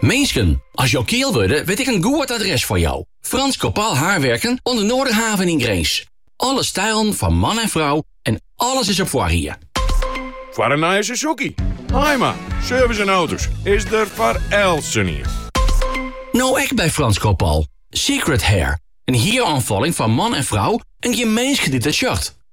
Minsken, as jo keal wurde, wit ik in goed adres foar jou. Frans Kopal Haarwerken oan de Noorderhaven yn Grins. Alle stilen foar man en frou en alles is op foarried. Foar in nije Suzuki? Haaima, service yn auto's, is der foar eltsenien. No ek by Frans Kopal. Secret Hair, in hieroanfolling foar man en frou en gjin minske dy't dat sjocht.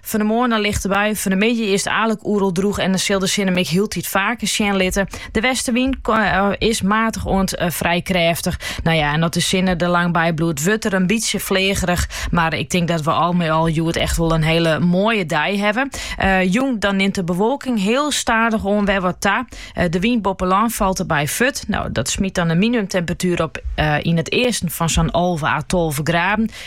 Fan 'e moarn in lichte bui, fan 'e middei is it aardlik oerall droech en sil de sinne him ek hieltyd faker sjen litte. De westewyn is matich oant frij krêftich. No ja, en as de sinne der lang by bliuwt, wurdt er in bytsje fleagerich. Mar ik tink dat we al mei al hjoed echt wol in hiele moaie dei hawwe. Jûn dan nimt de bewolking hiel stadich oan wer wat ta. De wyn boppe lân falt der by furt. No, dat smyt dan in minimumtemperatuer op yn it easten fan sa'n alve à tolve graden.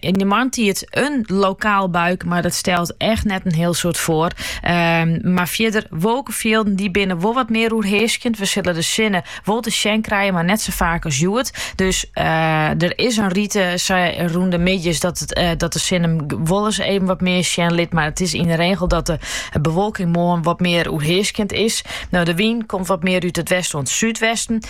in de moarntiid in lokaal buik, mar dat stelt echt net in heel soad foar. Ehm, maar verder, wolkenvelden die binnen wel wat meer oerheerskend. We zullen de sinne wel te sjen krijgen, maar net zo vaak als Joert. Dus eh, er is een riete, zei rond de midjes, dat, het, eh, dat de sinne wel eens even wat meer sjen lid. Maar het is in de regel dat de bewolking morgen wat meer oerheerskend is. Nou, de wind komt wat meer uit het westen, het zuidwesten.